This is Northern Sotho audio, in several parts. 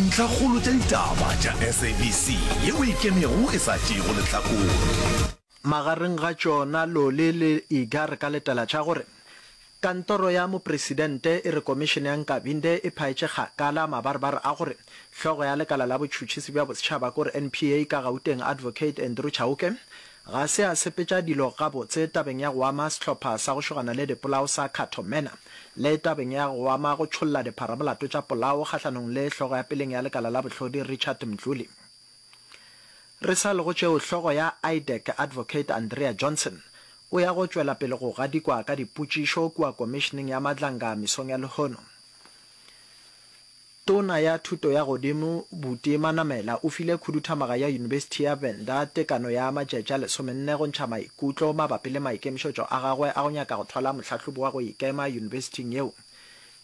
Ntlhakgolo tša ditaba tša SABC yeo e ikemego e sa tšeego lehlakore. Magareng ga tšona Loli le Iga re ka letela tša gore, Kantoro ya Mopresidente e re Komišene ya Nkabinde e phaetše kgakala mabarebare a gore hlogo ya lekala la botšhutšhisi bja bosetšhaba kore NPA ka Gauteng Advocate Andrew Chauke Ga se a sepetša dilo gabotse tabeng ya go ama sehlopha sa go šogana le dipolao sa Cato Manor le tabeng ya go ama go tšholla dipharamolato tša polao kgahlanong le hlogo ya peleng ya lekala la bohlodi Richard Mdluli. Re sa le go tšeo, hlogo ya IDEC Advocate Andrea Johnson o ya go tšwela pele go gadikwa ka dipotšišo kua Komišeneng ya Madlanga mesong ya lehono. Tona ya Thuto ya Godimo Buti Manamela o file khuduthamaga ya Yunibesithi ya Venda tekano ya matšatši a lesomenne go ntšha maikutlo mabapi le maikemišetšo a gagwe a go nyaka go thwala mohlahlobi wa go ikema yunibesithing yeo.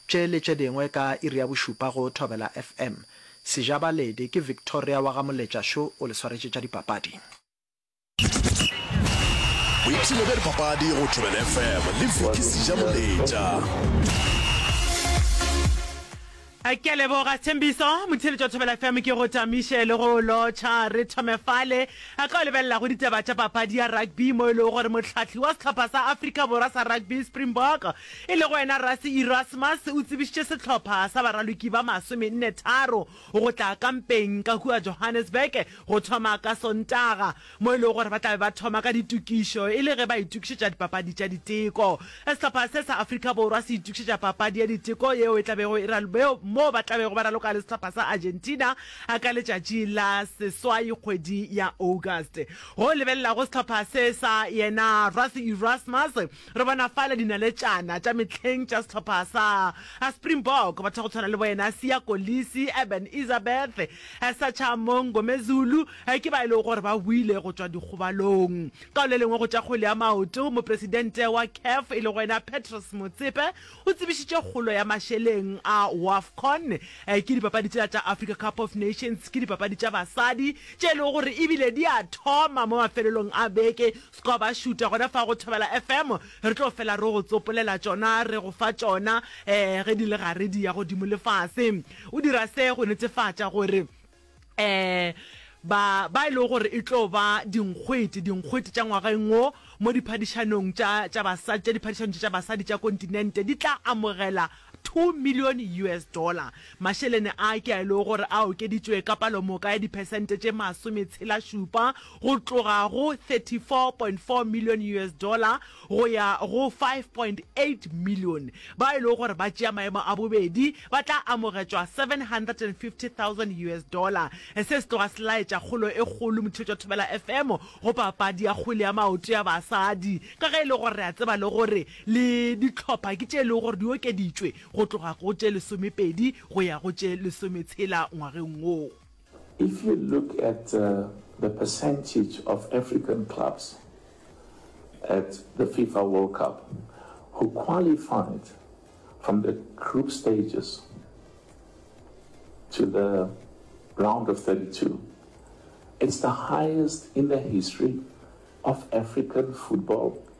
Tše le tše dingwe ka iri ya bošupa go Thobela FM. Sejabaledi ke Victoria wa ga Moletša Šo o le swaretše tša dipapadi. boipshino bja dipapadi go tobel fm le viki seja moletša a ke leboga tshembiso motheletši wa thobela fm ke go tamiše le go lotšha re thome fale a ka o lebelela go ditaba tša papadi ya rugby mo e lego gore motlhahli wa sehlopha sa afrika borwa sa rugby springbok e lego wena rasi erasmus o tsebišitše sehlopha sa baraloki ba masomenne tharo go tla ka mpeng ka kua Johannesburg go thoma ka Sontaga, mo e lego gore ba tla be ba thoma ka ditokišo e le ge ba itokišetša dipapadi tša diteko. Sehlopha se sa Afrika Borwa se itokišetša papadi ya diteko yeo e tla bego e ralobeo moo ba tla bego ba raloka le sehlopha sa Argentina ka letšatši la seswai kgwedi ya August. Go lebelelago sehlopha se sa yena Rassie Erasmus, Re bona fale dinaletšana tša mehleng tša sehlopha sa Springbok, batho ba go tshwana le boyena Siya Kolisi, Eben Etzebeth, Sacha Mngomezulu ke ba e lego gore ba boile go tšwa dikgobalong. Ka le lengwe go tša kgwele ya maoto, mopresidente wa CAF e lego yena Patrice Motsepe o tsebišitše kgolo ya mašeleng a Wafcon ke dipapadi tšela tša Africa Cup of Nations ke dipapadi tša basadi tše e lego gore ebile di a thoma mo mafelelong a beke. Go ba šuta gona fa go Thobela FM, re tlo fela re go tsopolela tšona, re go fa tšona ge di le gare di ya godimo le fase. O dira se go netefatša gore ba ba e lego gore e tlo ba dinkgwete, dinkgwete tša ngwageng wo mo diphadišanong tša tša basadi, tša diphadišano tša basadi tša kontinente di tla amogela 2 milione US dollar. Mašelene a ke a e lego gore a okeditšwe ka palomoka ya diphesente tše masometshelašupa go tloga go 34.4 milione US dollar go ya go 5.8 milione. Bao e lego gore ba tšea maemo a bobedi ba tla amogetšwa US750,000 dollar. Se se tloga se laetša kgolo e kgolo Motšhetšwa Thobela FM go papadi ya kgwele ya maoto ya basadi ka ge e le gore re a tseba le gore Le dihlopha ke tše e lego gore di okeditšwe go tloga go tše lesomepedi go ya go tše lesometshela ngwageng wo. If you look at the percentage of African clubs at the FIFA World Cup who qualified from the group stages to the round of thirty two, it's the highest in the history of African football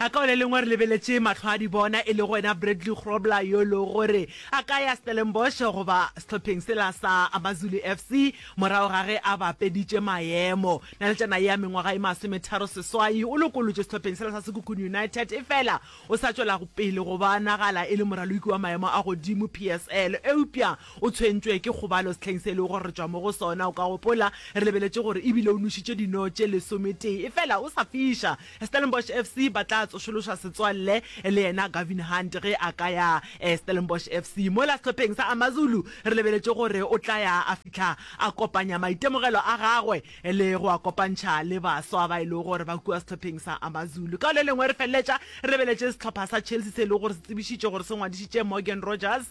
A Ka o le lengwe re lebeletše mahlo a di bona e lego yena Bradley Grobler yo e lego gore a ka ya Stellenbosch goba sehlopheng sela sa Amazulu FC morago ga ge a bapeditše maemo. Naletšana ye ya mengwaga e masometharo seswai o lokolotšwe sehlopheng sela sa Sekhukhune United efela o sa tšwela pele go bonagala e le moraloki wa maemo a godimo PSL eupša o tshwentšwe ke kgobalo sehleng se e lego gore re tšwa mo go sona. O ka gopola re lebeletše gore ebile o nošitše dino tše lesometee efela o sa fiša Stellenbosch FC ba tla tsošološa setswalle le yena Gavin Hunt ge a ka ya Stellenbosch FC. Mola sehlopheng sa AmaZulu re lebeletše gore o tla ya a fihla a kopanya maitemogelo a gagwe le go a kopantšha le baswa ba e lego gore ba kua sehlopheng sa AmaZulu. Ka le lengwe re feleletša re lebeletše sehlopha sa Chelsea se e lego gore se tsebišitše gore se ngwadišitše Morgan Rogers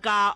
ka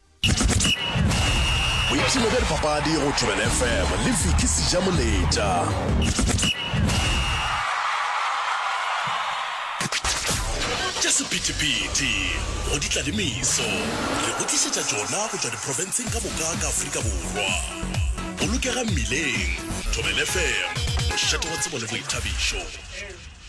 boipshino bja dipapadi go thobela fm le viki seja moletša tša sephethephethe go di tlalemiso re go tlišetša tšona go tšwa diprofenseng ka moka ka aforika borwa bolokega mmileng thobela fm mošate wa tsebo le boithabišo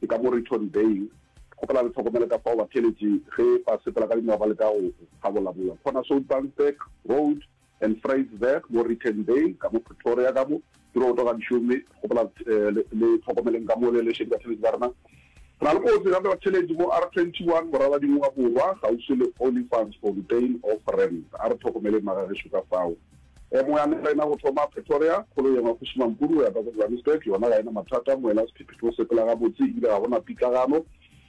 Ke ka mo Return Bay. Kgopela re hlokomele ka fao batheeletši ge ba sepela ka dinao ba leka go thabolabola Corner Soutbansberg Road and Vryseberg mo Return Bay, ka mo Pretoria ka mo. Ke roto ga dišo mme kgopela le hlokomeleng ka mo le lešedi batheeletši ba rena. Re na le kotsi gape batheeletši mo R21 Moraladinywa Borwa kgauswi le Olifantsfontein Offramp. A re hlokomeleng magagešo ka fao. E mongwe a nela ena go thoma Pretoria, kgolo yengwe go šoma Mpudu go ya ka ko Johannesburg, yona ga ena mathata, moela sephephetho o sepela gabotse ebile ga gona pitlagano.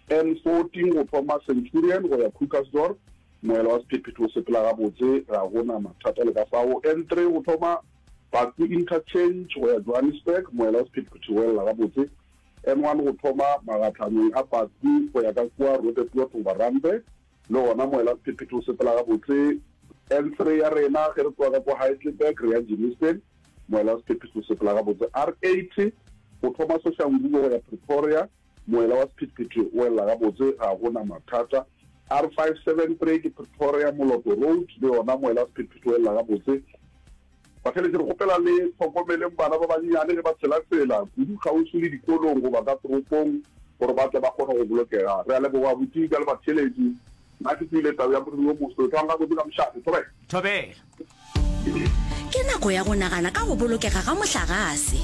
N14 go thoma Centurion go ya Krugersdorp, moela wa sephephetho o sepela gabotse, ga gona mathata le ka fao. N3 go thoma Baku Interchange go ya Johannesburg, moela wa sephephetho o elela gabotse. N1 go thoma magatlhanong a Baku go ya ka kua Roodepoort goba Randburg, Le gona moelasephethong o sepela gabotse. N3 ya rena ge re tloga ka kwa Heidelberg re ya Germiston, moelasephethong o sepela gabotse. R80 go thoma Soshanguve go ya Pretoria, moela wa sephethephethe o elela gabotse, ga go na mathata. R573 ke Pretoria, Moloto Road, le yona moelasephethephethe o elela gabotse. Ba feletše re kgopela le hlokomeleng bana ba bannyane ge ba tshelatshela, kudu kgauswi le dikolong goba ka toropong, gore ba tle ba kgone go bolokega. Re a leboga abuti ka le batheeletši. Nna ke tsebile tau ya moriri wo moso. Tlwang gabotse ka mošate. Thobela. Thobela. Ke nako ya go nagana ka go bolokega ga mohlagase.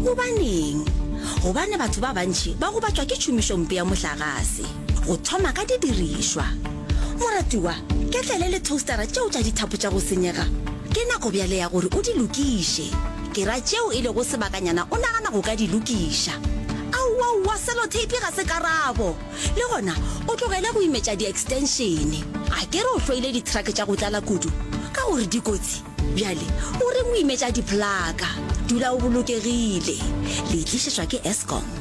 Gobaneng? Gobane batho ba bantši ba gobatšwa ke tšhomišompe ya mohlagase. Go thoma ka didirišwa. Moratiwa, ketlele le toastera tšeo tša dithapo tša go senyega. Ke nako bjale ya gore o di lokiše. Ke ra tšeo e lego sebakanyana o nagana go ka di lokiša. Aowaowa, seloteipi ga se karabo! Le gona o tlogele go imetša diekstenšene. A ke re o hloile dithrake tša go tlala kudu ka gore di kotsi? Bjale o reng o imetša diphlaka? Dula o bolokegile. Le e tlišetšwa ke Eskom.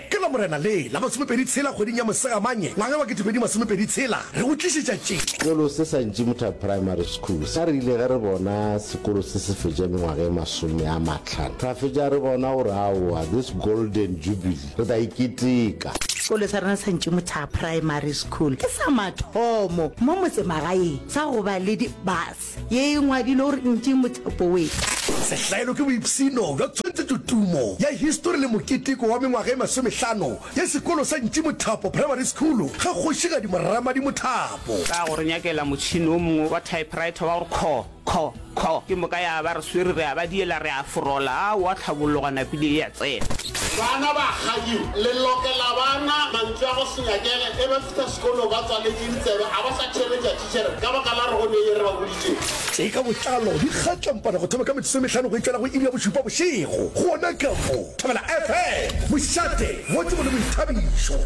Ke Lamorena le la masomepedi tshela kgweding ya Mosegamanye ngwaga wa ketepedi masomepedi tshela re go tlišetša tše. Sekolo se sa Ntšimutha Primary School sa rile ge re bona sekolo se se fetša mengwaga e masome a mahlano ra fetša re bona gore aowa this golden jubilee re tla e keteka. Sekolo sa rena sa Ntšimutha Primary School ke sa mathomo mo motsemagaeng sa go ba le di bus. Ye e ngwadilwe gore ntši mothapo we. Sehlaelo ke boipshino bja tshwantshetšo tumo ya histori le moketeko wa mengwaga e masomehlano ya sekolo sa Ntši Mothapo Primary School ga Kgošigadi Moramadi Mothapo. Ka go re nyakela motšhini o mongwe wa typewriter wa go re kho, kho, kho, ke moka ya ba re swere re a ba diela re a forola, a wa tlhabologa napile e a tsena. Bana ba kgadi le lokela bana mantswe a go se nyakele e ba fihla sekolo ba tswaletše ditsebe a ba sa theeletša Sir, ka baka la rogo ne ye re ba boditše. Tše ka botlalo di kgatlampana go thoma ka metsotso e mehlano go itšela go iri ya bošupa bošego gona ka mo Thobela FM, Mošate, mo Tsebo le Boithabišo.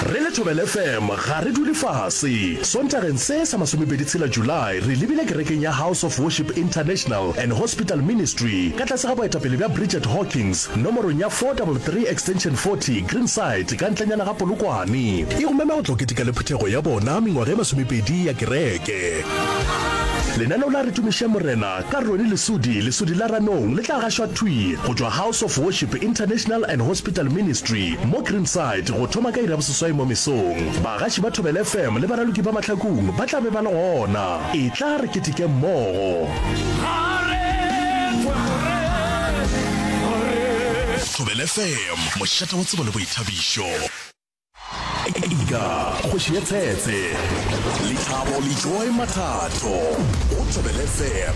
Re le Thobela FM ga re dule fase. Sontageng se sa masomepedi tshela July re lebile kerekeng ya House of Worship International and Hospital Ministry ka tlase ga boetapele bja Bridget Hawkins, Nomorong ya 433 extension 40, Greenside, ka ntlenyana ga Polokwane. E go mema go tlo keteka le phuthego ya bona mengwaga e masomepedi ya kereke. Lenaneo la Re Tumišeng Morena ka Ronnie Lesudi, Lesudi la Ranong, le tla gašwa thwi go tšwa House of Worship International and Hospital Ministry mo Greenside go thoma ka iri ya boseswai mo mesong. Bagaši ba Thobela FM le baraloki ba Mahlakung ba tla be ba le gona. Etla re keteke mmogo. Thobela FM, mošate wa tsebo le boithabišo. Ega kgoši ya tshetse, lethabo le joy mathato go Thobela FM.